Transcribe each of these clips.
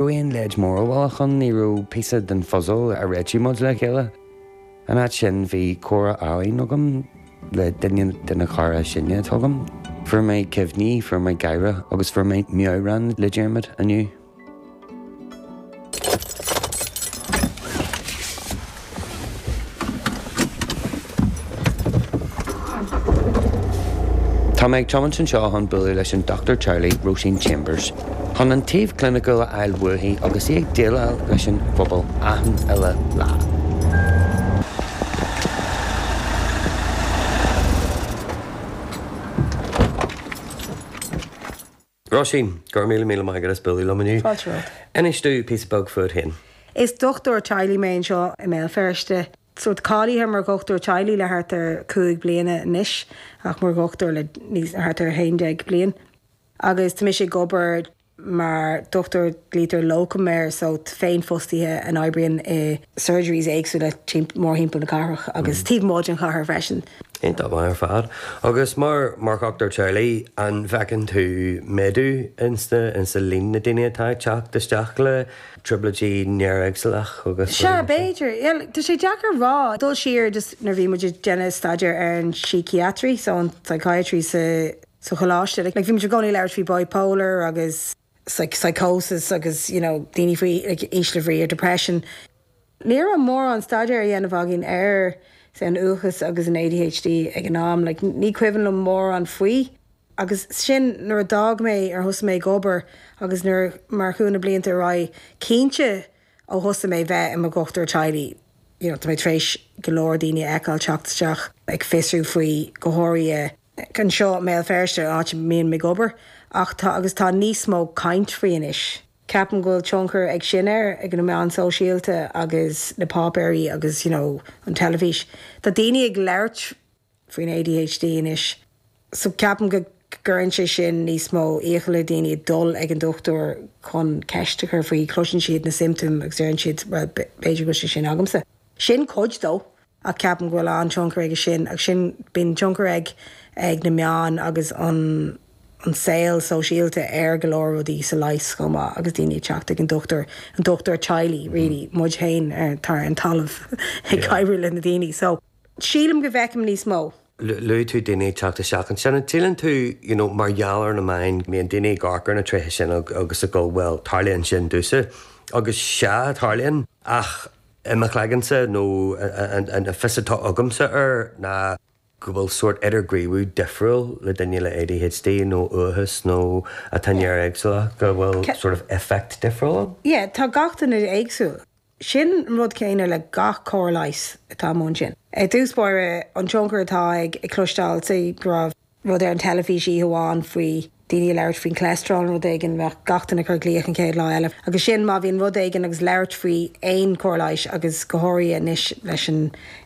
raibh aon leid mhór dhiabhlach ann, ní raibh píosa den phuzal a réitigh muid le chéile. In áit sin, bhí comhrá álainn agam le duine de na cairde is sine atá agam. Fuair mé cuimhní, fuair mé gáire agus fuair mé meabhrán le Diarmaid inniu. Tá mé ag tiomáint anseo chun bualadh leis an Dochtúir Teaghlaigh, Róisín Chambers, chun an taobh cliniciúil a fháil uaithi agus í ag déileáil leis an phobal achan uile lá. Róisín, Go raibh míle míle maith agat as bualadh liom inniu. Fáilte romhat. Inis domh píosa beag fút féin. Is dochtúir teaghlaigh mé anseo i mBéal Feirste. Sórt cáilithe mar dhochtúir teaghlaigh le thart ar cúig bliana anois ach mar dhochtúir le thart ar haon déag bliain. Agus tá mise ag obair mar dhochtúir, glaotar locum air, sórt féinfhostaithe a oibríonn i. surgeries éagsúla mórthimpeall na cathrach agus taobh amuigh den chathair freisin. Iontach maith ar fad. Agus mar dhochtúir teaghlaigh, an bhfeiceann tú méadú insa líon na daoine atá ag teacht isteach le trioblóidí néaréagsúlacha agus rud mar sin? Sea, b'fhéidir. Tá sé deacair a rá. Dul siar just nuair a bhí muid ag déanamh staidéir ar an síciatraí, so an psychiatry sa choláiste, like bhí muid i gcónaí ag labhairt faoi bipolar agus, psychosis agus you know daoine faoi like, ísle brí or depression. Ní raibh mórán staidéir á dhéanamh againn ar say, an uathachas agus an ADHD ag an am. Like, ní cuimhin liom mórán faoi. Agus sin nuair a d'fhág mé, ar thosaigh mé ag obair agus nuair, mar chuaigh na blianta ar aghaidh, cinnte ó thosaigh mé bheith i mo dhochtúir teaghlaigh you know, tá mé tar éis go leor daoine a fheiceáil teacht isteach ag fiosrú faoi go háirithe, anseo i mBéal Feirste, áit a mbím ag obair, ach tá, agus tá níos mó caint faoi anois. Ceapaim go bhfuil tionchar ag sin air, ag na meáin sóisialta agus na páipéirí agus you know an teilifís. Tá daoine ag labhairt faoin ADHD anois so ceapaim go gcuireann sé sin níos mó iachall ar dhaoine dul ag an dochtúir chun ceist a chur faoi, cloiseann siad na siomptaim agus deireann siad bhuel b'fhéidir go bhfuil sé sin agamsa. Sin cuid de. ach ceapaim go bhfuil an-tionchar aige sin, agus sin, bíonn tionchar ag na meáin agus an saol sóisialta ar go leor rudaí, sa leigheas chomh maith agus daoine ag teacht ag an dochtúir, an dochtúir teaghlaigh really, muid féin ar an talamh ag oibriú le na daoine, so sílim go bhfeicim níos mó. Luaigh tú daoine ag teacht isteach ansin, an síleann tú you know mar gheall ar na meáin go mbíonn daoine ag amharc ar na tréithe sin agus ag gabháil tarlaíonn sin domhsa agus sea tarlaíonn ach i mo chloigeannsa, nó an fios atá agamsa air ná go bhfuil sórt idirghníomhú difriúil le duine le ADHD nó uathachas nó atá néaréagsúlach, go bhfuil sort of effect difriúil ann. Yeah, tá gach duine éagsúil. Sin an rud céanna le gach cóir leighis atá amuigh ansin. I dtús báire, an tionchar atá ag cloisteáil, say, go raibh. rud ar an teilifís oíche amháin faoi daoine ag labhairt faoin cholesterol nó rud éigin, bheadh gach duine ag cur glaoch an chéad lá eile. Agus sin, má bhíonn rud éigin agus labhairt faoi aon chóir leighis, agus go háirithe anois leis an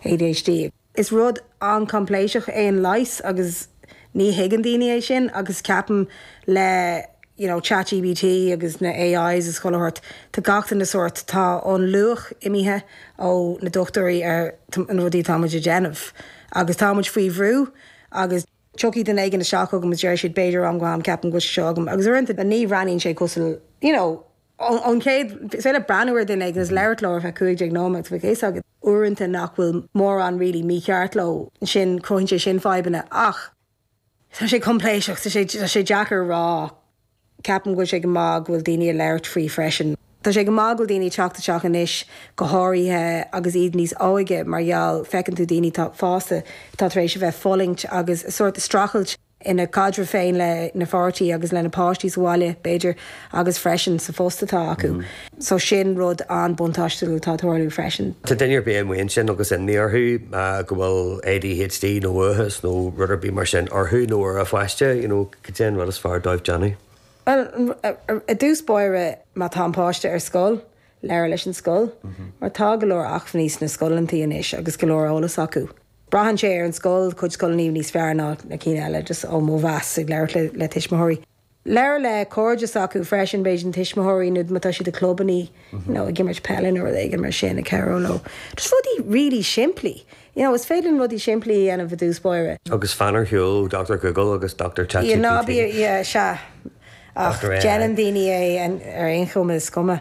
ADHD. Is rud an-choimpléiseach é an leigheas agus ní thuigeann daoine é sin agus ceapaim le you know Chat GPT agus na AIs is chuile shórt, tá gach duine sórt, tá an luach imithe ó na dochtúirí ar na rudaí atá muid a déanamh. Agus tá muid faoi bhrú. agus tiocfaidh duine éigin isteach chugam agus déarfaidh siad, b'fhéidir, ó am go ham, ceapaim go bhfuil sé seo agam, agus uaireanta ní bhreathnaíonn sé cosúil, you know, ón chéad, is féidir leat breathnú ar dhuine éigin agus labhairt leo ar feadh cúig déag nóiméad agus bheadh a fhios agat uaireanta nach bhfuil mórán really mícheart leo, ansin cruthaíonn sé sin fadhbanna, ach tá sé coimpléascach, tá sé, tá sé deacair a rá. Ceapaim go bhfuil sé go maith go bhfuil daoine ag labhairt faoi freisin. Tá sé go maith go bhfuil daoine ag teacht isteach anois, go háirithe agus iad níos óige, mar gheall, feiceann tú daoine atá fásta atá tar éis a bheith fulaingt agus sórt streachailt ina gcaidreamh féin lena bpáirtí agus lena páistí sa bhaile, b'fhéidir, agus freisin sa phost atá acu. So sin rud an-buntáistiúil atá ag tarlú freisin. Má tá duine ar bith amuigh ansin agus imní orthu go bhfuil ADHD nó uathachas nó rud ar bith mar sin orthu nó ar a pháiste, you know. goidé an rud is fearr dóibh déanamh. Bhuel, i dtús báire, má tá an páiste ar scoil, labhair leis an scoil, mar tá go leor acmhainní sna scoileannaí anois agus go leor eolas acu. Braitheann sé ar an scoil, cuid scoileannaí níos fearr ná na cinn eile, just ó mo mheas ag labhairt le tuismitheoirí. Labhair le cairde s'acu freisin, b'fhéidir na tuismitheoirí nó má tá siad i gclubannaí, you know, ag imirt peile nó rud éigin mar sin, ag cabhrú leo. Just rudaí really simplí. You know, is féidir linn rudaí simplí a dhéanamh i dtús báire. Agus fan ar shiúl ó Doctor Google agus Doctor Chat GPT. Yeah, ná bí, yeah, sea. Ach déanann daoine é ar aon chuma, is cuma.